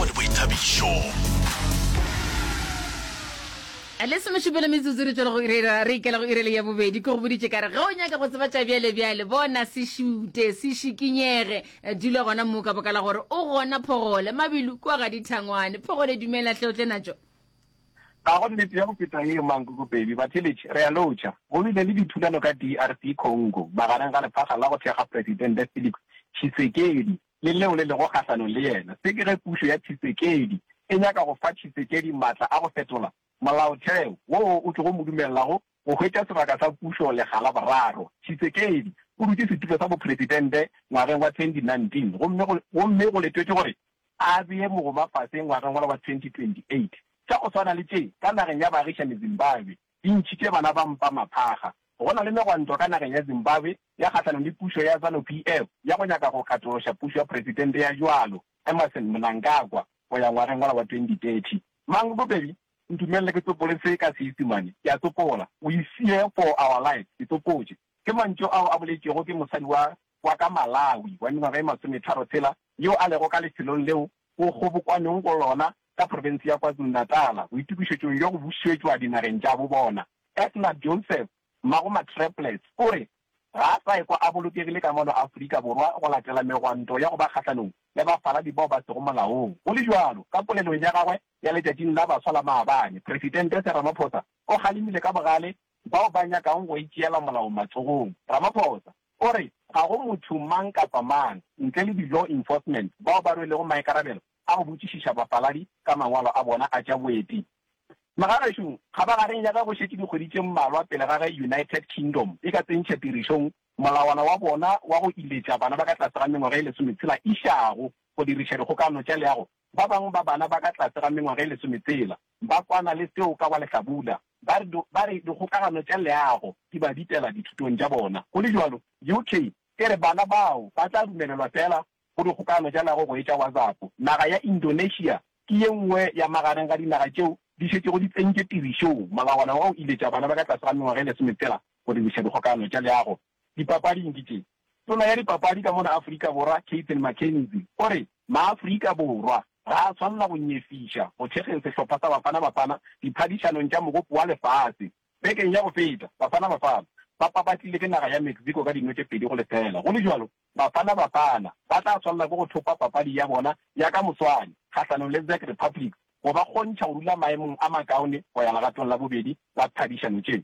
le boithabišo. A le semešupelo metsotso re tšwela go irera re ikela go irele ya bobedi ke go boditše kare ge o nyaka go tseba tša bjale bjale bona se šute se šikinyege eh, dula gona moo ka boka la gore o gona phogole mabilu kua ga dithangwane phogole dumela hle o tle natšo ga go nnete ya go feta ye mankokopedi batheletše re a lotšha go bile le dithulano ka drc congo magareng ga lephaga la go thekga presidente felix tshisekedi le leo le lego kgahlanong le yena, se ke ge pušo ya Tshisekedi e nyaka go fa Tshisekedi matla a go fetola molaotheo woo o tlogo mo dumelelago go hwetša sebaka sa pušo lekga la boraro. Tshisekedi o dutše setulo sa bopresidente ngwageng wa 2019 gomme go gomme go letetšwe gore a bee mogoma fase ngwageng wa 2028. Tša go swana le tše ka nageng ya baagišani Zimbabwe. di ntšhitše bana ba mpa maphaga. Go na le megwanto ka nageng ya Zimbabwe ya kgahlanong le pušo ya Zanu PF ya go nyaka go katološa pušo ya Presidente ya bjalo, Emmerson Mnangagwa, go ya ngwageng wola wa 2030. Mang bobedi? Ntumelele ke tsopole se ka Seisimane, ke a tsopola, We fear for our lives, ke tsopotše. Ke mantšu ao a boletšwego ke mosadi wa wa ka Malawi wa mengwaga e masometharo tshela yo a lego ka lefelong leo go kgobokwanwego go lona ka profense ya KwaZulu-Natal boitokišetšong bja go bušetšwa dinageng tša bo bona. Edna Joseph, mmago Matrepless, o re ga a sa ekwa a bolokegile ka mono Afrika Borwa go latela megwanto ya go ba kgahlanong le bafaladi bao ba sego molaong. Go le bjalo, ka polelong ya gagwe ya letšatšing la baswa la maabane, Presidente Cyril Ramaphosa o kgalemile ka bogale bao ba nyakago go itšeela molao matsogong. Ramaphosa o re ga go motho mang kapa mang ntle le di-law enforcement bao ba rwelego maikarabelo a go botšišiša bapaladi ka mangwalo a bona a tša boeti. Megabaešong, kgabagareng ya ge go šetše dikgwedi tše mmalwa pele ga ge United Kingdom e ka tsentšha tirišong molawana wa bona wa go iletša bana ba ka tlase ga mengwaga e lesometshela e išago go diriša dikgokano tša leago, Ba bangwe ba bana ba ka tlase ga mengwaga e lesometshela ba kwana le seo ka wa Lehlabula ba re ba re dikgokagano tša leago di ba bitela dithutong tša bona. Go le bjalo, UK e re bana bao ba tla dumelelwa feela go dikgokagano tša leago go etša WhatsApp. Naga ya Indonesia ke ye nngwe ya magareng ga dinaga tšeo di šetšego di tsentše tirišong molawana wa go iletša bana ba ka tlase ga mengwaga e lesometshela go diriša dikgokagano tša leago Dipapading ke tše. Tona ya dipapadi ka mona Afrika Borwa Cathan McKenzie o re maAfrika Borwa ga a swanela go nyefiša go thekgeng sehlopha sa Bafana Bafana diphadišanong tša Mogopo wa Lefase. Bekeng ya go feta, Bafana Bafana ba papatlile ke naga ya Mexico ka dino tše pedi go lefela. Go le bjalo, Bafana Bafana ba tla swanela ke go thopa papadi ya bona ya ka moswane kgahlanong le Czech Republic go ba kgontšha go dula maemong a makaone go ya legatong la bobedi la phadišano tše.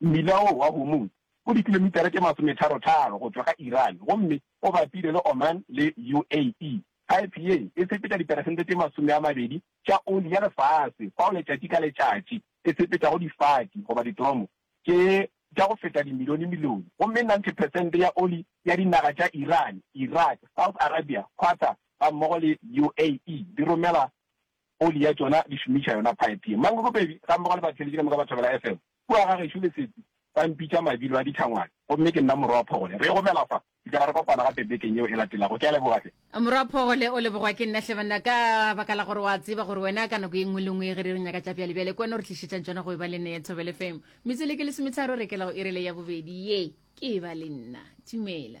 Mmila wo wa Hormuz o dikilomitara tše masometharo-tharo go tšwa ga Iran gomme o bapile le Oman le UAE. Phaephe ye e sepetša diperesente tše masome a mabedi tša oli ya lefase fao letšatši ka letšatši e sepetšago difati goba ditoromo tše tša go feta dimilioni-milioni gomme 90 peresente ya oli ya dinaga tša Iran, Iraq, South Arabia, Qatar gammogo le UAE di romela oli ya tšona di šomiša yona phaephe ye. Mang Rubebe gammogo le batheeletši ka moka ba thobela FM. Kua ga gešo Lesetsi ba mpitša Mabilo a ditlhangwane gomme ke nna morwa wa Phogole. Re gomela fa, re tla ba re kopana gape bekeng yeo e latelago. Ke a leboga hle. Morwa Phogole, O lebogwa ke nna hle banna ka baka la gore o a tseba gore wena ka nako ye nngwe le nngwe ge re re nyaka tša bjalebjale ke wena o re tlišetšang tšona go eba le nna ya Thobel FM. Metsweleke lesometharo re kela go iri le ya bobedi ye. Ke eba le nna. Dumela.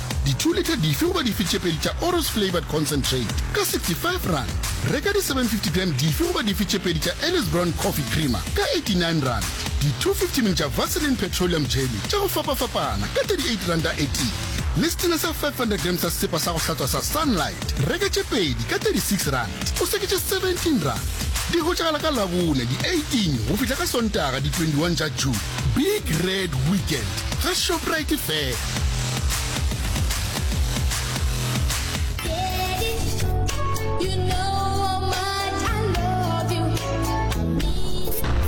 Dithuolitha dife goba dife tše pedi tša Oros Flavoured Concentrate ka R65. Reka di 750 gram dife goba dife tše pedi tša Ellis Brown Coffee Creamer ka R89. Di 250 ml tša Vaseline Petroleum Jelly tša go fapafapana ka R38 a eti. Le setena sa 500 gram sa sesepa sa go hlatswa sa Sunlight. Reka tše pedi ka R36, o se ke tše R17. Di hwetšagala ka Labone di 18 go fihla ka Sontaga di 21 tša June. Big Red Weekend ga Shoprite fela.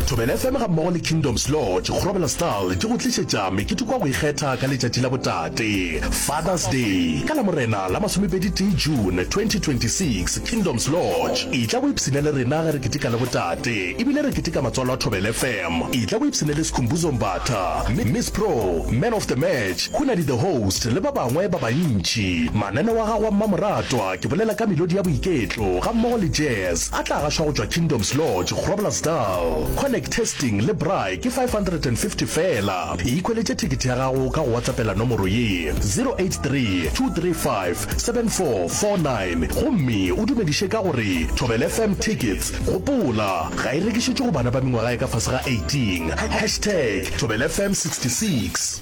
Thobela FM ga mmogo le Kingdoms Lodge Grobela Style di go tlišetša mekete kwa go ikgetha ka letšatši la botate Father's Day ka la morena la masomepedi tee June 2026 Kingdoms Lodge e tla go ipshina le rena ge re keteka la botate E bile re keteka matswalo a Thobela FM. Etla o ipshine le Skhumbuzo Mbatha, Miss Pro, Man of the Match, Khunadi the Host le ba bangwe ba bantši. Mananeo a gago a mmamoratwa, ke bolela ka melodi ya boiketlo gammogo le jazz, a tla gašwa go tšwa Kingdoms Lodge, Groblersdal. Connect testing le braai ke 550 feela. E ikhweletše thekete ya gago ka go WhatsAppela nomoro ye, 0832357449 gomme o dumediše ka go re, Thobela FM Tickets. Gopola, ga e rekišetšwe go bana ba mengwaga e ka fase ga 18. Hashtag Thobela FM 66.